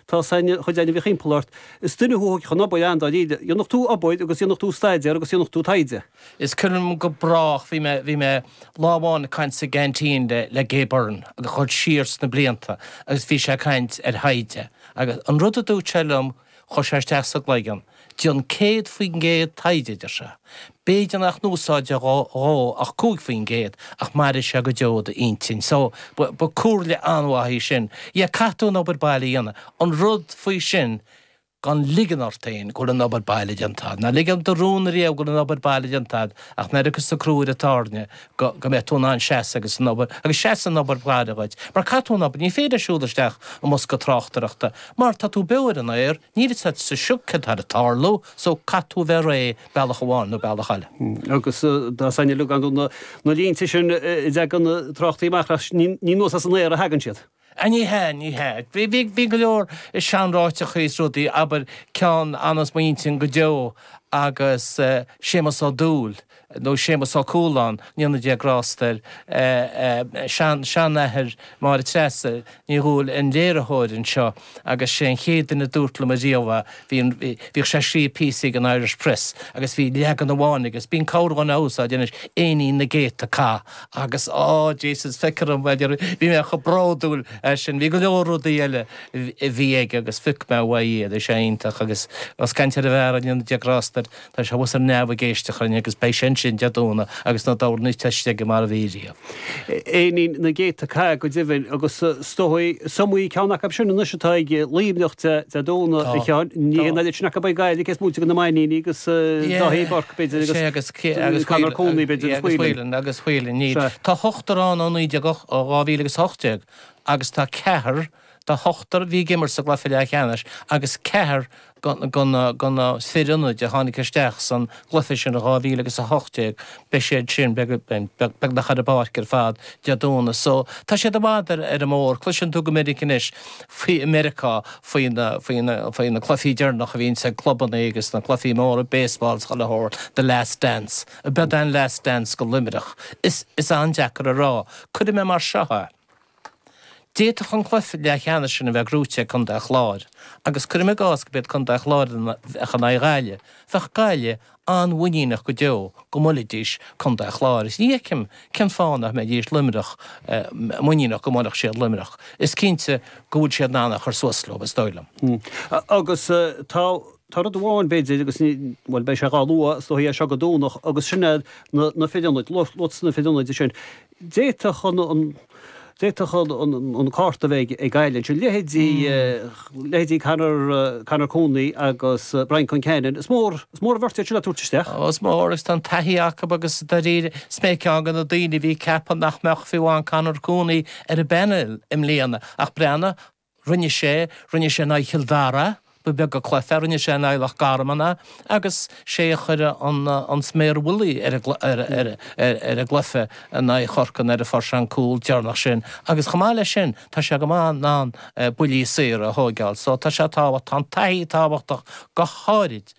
Tá san chuid ainmhí thimpeall ort. Is duine thú a thógfadh an obair an-dáiríre. Dhéanfadh tú obair agus dhéanfadh tú staidéar agus dhéanfadh tú taighde. Is cuimhin liom go brách, bhí mé, bhí mé lá amháin ag caint sa gceaintín le, le Gay Byrne agus chur siar sna blianta agus bhí sé ag caint ar thaighde agus an rud a dúirt sé liom, chuir sé isteach sa gcloigeann. Déan 100% taighde, adeir sé. B'fhéidir nach n-úsáidfidh tú ach 5% ach mairfidh sé go deo i d'intinn. So, ba comhairle an-mhaith í sin. Yeah, caithfidh tú an obair baile a dhéanamh. An rud faoi sin, gan ligean ort fhéin go bhfuil an obair baile déanta agad. Ná ligean do rún ariamh go bhfuil an obair baile déanta agad ach nuair a rachas an crú ar an tairne go go mbeidh tú in ann seasamh agus an obair, agus seasann an obair bhaile dhuit. Mar caithfidh tú an obair, ní féidir siúl isteach i mbosca tráchtaireachta mar tá tú beo ar an aer, Níl fhios a't sa sioc céard tá le tarlú so caithfidh tú a bheith réidh bealach amháin nó bealach eile. Agus na sainleaganacha, na línte sin a dteagann na tráchtairí amach as, ní anuas as an aer a thagann siad. A, ní hea, ní hea. Bhí go leor seanráiteachaí is rudaí, abair, ceann a fhanfas i mo intinn go deo agus Séamus Ó Dubhghaill, nó Séamus Ó Cualáin, go ndéana Dia grásta air, seanathair Máire Treasa Ní Dhubhghaill, an léiritheoir anseo agus sé an chéad duine a dúirt liom ariamh a, bhí an, bhíodh sé ag scríobh píosaí ag an Irish Press agus bhí leagan amháin aige, bíonn corrdhuine á úsáid anois, Féinní na gCéadta Cath agus á Jesus feicthear dhom a deir, bhí mé chomh bródúil as sin, bhí go leor rudaí eile a bhí aige agus phioc mé uaidh iad, bhí sé iontach agus ós ag caint ar an bhfear go ndéana Dia grásta air, Tá sé thuas ar neamh ag éisteacht linn agus beidh sé ansin Dé Domhnaigh agus na dobharnaigh te istigh mar a bhí riamh. Féinní na gcéadta cath go deimhin, agus is dóigh is iomaí ceann acu sin anois atá ag Luimneach Dé Domhnaigh, a Sheáin. Ní hé an oiread sin acu a bheidh ag Gaillimh, cés moite de na Mainníní agus Dáithí Burke, b'fhéidir, agus Conor Cooney, b'fhéidir, agus Whelan. Agus Whelan, ní. Tá ochtar ann ó naoi déag ó 2018 agus tá ceathar. Tá ochtar a bhí ag imirt sa gcluiche leath-cheannais agus ceathar go na fir ionaid a tháinig isteach san gcluiche sin i 2000 agus 18. Beidh siad sin beagnach ar an bpáirc ar fad Dé Domhnaigh so tá siad i bhfad ar an mbóthar. Cloiseann tú go minic anois faoi i Meiriceá faoi na cluifí deireanach a bhíonns ag clubannaí agus na cluifí móra baseball 's chuile shórt The Last Dance. Ab é an Last Dance go Luimneach. Is an-deacair a rá. Cuirfidh mé mar seo é. D'fhéadfadh an cluiche leath-cheannais sin a bheith gnóite ag Contae an Chláir agus cuirim i gcás go b'iad Contae an Chláir a bheadh in aghaidh Ghaillimh, bheadh Gaillimh an-mhuiníneach go deo go mbuailfidís Contae an Chláir is ní fheicim cén fáth nach mbeidís Luimneach muiníneach go mbuailfeadh siad Luimneach. Is cinnte go bhfuil siad in ann a chur suas leo, is dóigh liom. Agus tá. Tá rud amháin, b'fhéidir, agus ní, bhuel, beidh sé dhá luadh, is dóigh uaidh seo go Domhnach, agus sin é na, na fir ionaid, luaitear na fir ionaid ansin. D'fhéadfadh an, an, d'fhéadfadh an, an, an cárta a bheith ag Gaillimh ansin, leithéidí, leithéidí Conor, Conor Cooney agus Brian Concannon, is mór, is mór an bheirt iad sin le tabhairt isteach. Ó, is mór, agus tá an taithí acu agus dáiríre, is mé ceann de na daoine a bhí ag ceapadh nach mbeadh fiú amháin Conor Cooney ar an bpanel i mbliana ach breathnaigh, rinne sé, rinne sé in aghaidh Chill Dara, ba bheag de chluife, rinne sé in aghaidh Loch Garman é, agus sé a chuir an, an sméar mhullaigh ar a, ar, ar, ar, ar a gcluife in aghaidh Chorcaí nuair a fuair sé an cúl deireanach sin agus chomh maith leis sin tá sé go maith in ann buillí saora a thóigeáil so tá sé tábhacht, tá an taithí tábhachtach go háirid.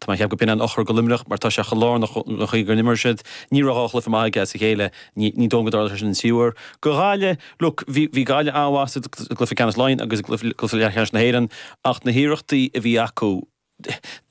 Tá mé ag ceapadh go b'shin an eochair do Luimneach mar tá sé chomh lárnach don chaoi go n-imríonn siad. Ní raibh dhá chluife maith aige as a chéile. Ní dóigh liom go dtarlóidh sé sin an tríú uair. Do Ghaillimh, look, bhí Gaillimh an-mhaith sa gcluife ceannais Laighean agus i gcluife leathcheannais na hÉireann ach na hiarrachtaí a bhí acu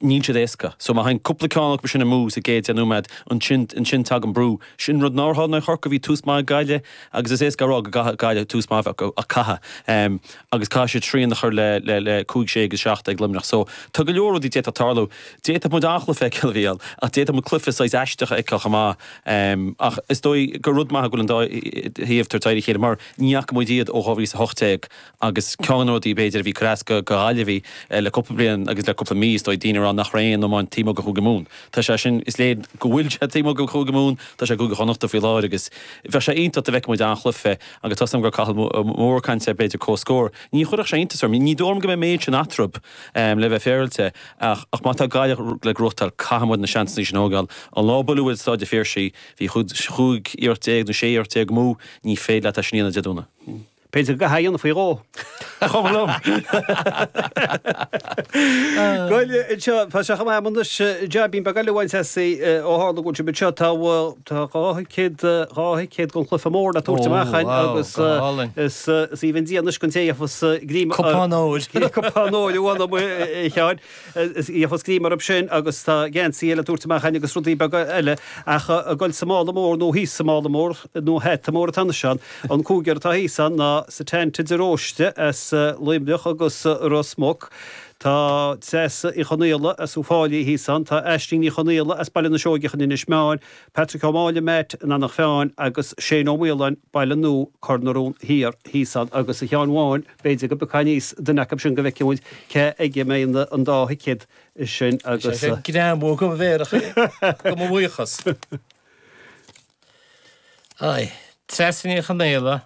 níl siad éasca. So má thagann cúpla ceann acu sin amú sa gcéad deich nóiméad, ansin tagann brú. Sin rud nár tharla in aghaidh Chorcaí. Bhí tús maith ag Gaillimh agus is éasca a rá go gcaithfidh Gaillimh tús maith a bheith acu ach caithfidh. agus caithfidh siad srian a chur le cúig, sé agus seacht ag Luimneach so tá go leor rudaí a d'fhéadfadh tarlú. D'fhéadfadh muid an-chluiche a fheiceáil a bhí ann ach d'fhéadfadh muid cluiche saghas aisteach a fheiceáil chomh maith. Ach is dóigh gur rud maith go bhfuil an dá thaobh ag tabhairt aghaidh ar a chéile mar ní fhaca muid iad ó 2018 agus ceann de na rudaí b'fhéidir a bhí ag cur as do Ghaillimhigh le cúpla bliain agus le cúpla mí is dóigh daoine ag rá nach raibh aon iomáint taobh amuigh de Chúige Mumhan. Tá sé sin, is léir go bhfuil sé taobh amuigh de Chúige Mumhan, tá sé i gCúige Chonnacht faoi láthair agus bheadh sé iontach dá bhfeicfeadh muid an-chluiche. Agus tá a fhios agam go raibh Cathal Moore ag caint ar, b'fhéidir comhscór. Ní chuirfeadh sé iontas orm. Ní dóigh liom go mbeidh an méid sin eatarthu, le bheith féaráilte. Ach má tá Gaillimh le gnóthachtáil caithfidh muid na seansanna sin a thógáil. An lá a buaileadh muid i Staid an Phiarsaigh bhí chúig iarracht déag nó sé iarracht déag amú. Ní féidir leat é sin a dhéanamh Dé Domhnaigh. B'fhéidir go gcaithfeá é a dhéanamh faoi dhó. Chomh liom. Goile anseo, tá sé chomh maith amuigh anois, a Sheáin Bháin, beidh ag goil a bhaint as ó tharla go bhfuil muid anseo tá dhá thicéad, dhá thicéad don Chluife Mór le tabhairt amach againn agus is aoibhinn Dia anois don té a gheobhas greim. Cupán óir. Cupán óir amháin amuigh, Sheáin. Is í a gheobhas greim orthu sin agus tá geansaí eile le tabhairt amach againn agus rudaí beaga eile ach ag goil sa mála mór nó thíos sa mála mór nó hata mór atá anois ann. An cúigear atá thíos ann ná Setanta de Róiste as Luimneach agus Ros Muc, tá Treasa Uí Chonaola as Uíbh Fhailí thíos ann, tá Aisling Ní Chonaola as Baile na Seoigeach in Inis Meáin, Patrick Ó Máille, Matt, in Anach Mheáin agus Shane Ó Maoláin, Baile Nua, Cor na Rón Thiar thíos ann agus a Sheáin Bháin, b'fhéidir go bpiocfá aníos duine acu sin go bhfeicfidh muid cé aige a mbeidh an dá thicéad sin agus. Tá sé ag greamú de mo mhéaracha de mo bhuíochas. Aye. Treasa Ní Chonaola,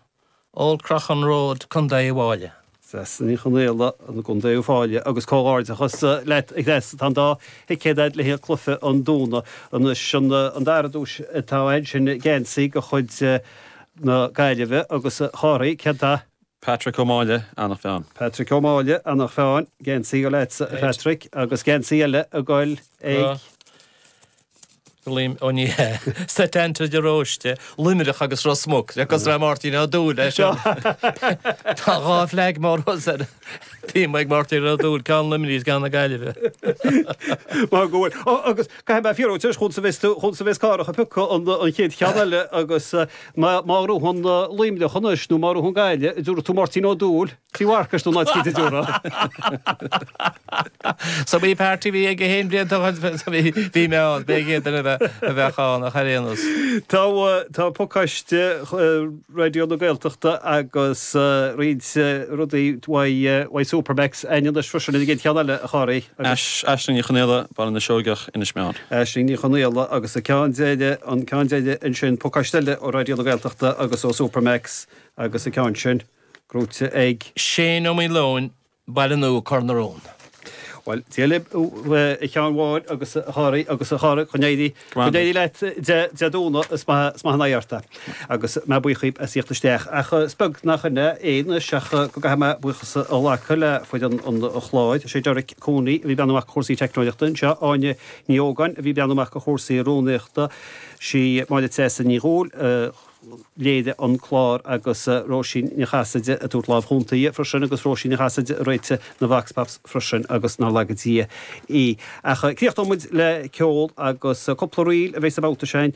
Old Croghan Road, Co Uíbh Fhailí. Treasa Ní Chonaola, I gContae Uíbh Fhailí agus comhghairdeachas leat a Threasa tá an dá thicéad a'd le haghaidh chluife an Domhnaigh anois. An dara duais atá a'd sin geansaí de chuid na Gaillimhe agus a Chárthaigh. Cén dath? Patrick Ó Máille, Eanach Mheáin. Patrick Ó Máille, Eanach Mheáin, geansaí ag goil a'dsa a Phatrick agus geansaí eile ag goil ag. Liam Ó ní hea. Setanta de Róiste, Luimneach agus Ros Muc agus raibh Máirtín Ó Dúill leis seo. Tá dhá flag mór os ar Bím ag Máirtín Ó Dúill ceann Luimnigh is ceann na Gaillimhe. Mar go bhfuil. Ó agus caithfidh mé fiafraí anois chúns a bheas tú chúns a bheas Cárthach ag piocadh an chéad cheann eile agus. Má ghnóthaíonn Luimneach anois nó má ghnóthaíonn Gaillimh an dtabharfaidh tú Máirtín Ó Dúill tigh Mharcais nó ná cítear deora. So bhí party bhí aige fhéin blianta ó shin bhí mé ann, b'fhéidir iad duine a bheadh ann ach ar aon nós. Tá tá pacáiste Raidió na Gaeltachta agus roinnt rudaí uaidh uaidh Supermacs a'inn anois freisin an gcéad cheann eile a Chárthaigh agus. Aisling Ní Chonaola, Baile na Seoigeach, Inis Meáin. Aisling Ní Chonaola agus an ceann deiridh, an ceann deiridh ansin Pacáiste Eile ó Raidió na Gaeltachta agus ó Supermacs agus an ceann sin gnóite ag. Seán Ó Maoileoin, Baile Nua, Cor na Rón. Bhuel, Dia libh a Sheáin Bháin agus a Chárthaigh agus a Chárthaigh go n-éirí go n-éirí leat Dé Dé Domhnaigh is maith is maith an oidhe ort é. Agus mé buíoch dhaoibh as thíocht isteach. Ach is beag nach in é anois ach go gcaithfidh mé buíochas a ghlacadh le foireann an chláir. Sé Derek Cooney a bhí ag breathnú amach do chúrsaí teicneolaíochta anseo, Áine Ní Ógáin a bhí ag breathnú amach do chúrsaí rúnaíochta, sí Máire Treasa Ní Dhubhghaill a léirigh an clár agus Róisín Ní Chasaide ag tabhairt lámh chúnta dhi freisin agus Róisín Ní Chasaide a réitigh na Vox Pops freisin agus nár laga Dia í. Ach críochnóidh muid le ceol agus cúpla ríl a bheidh sa babhta sin.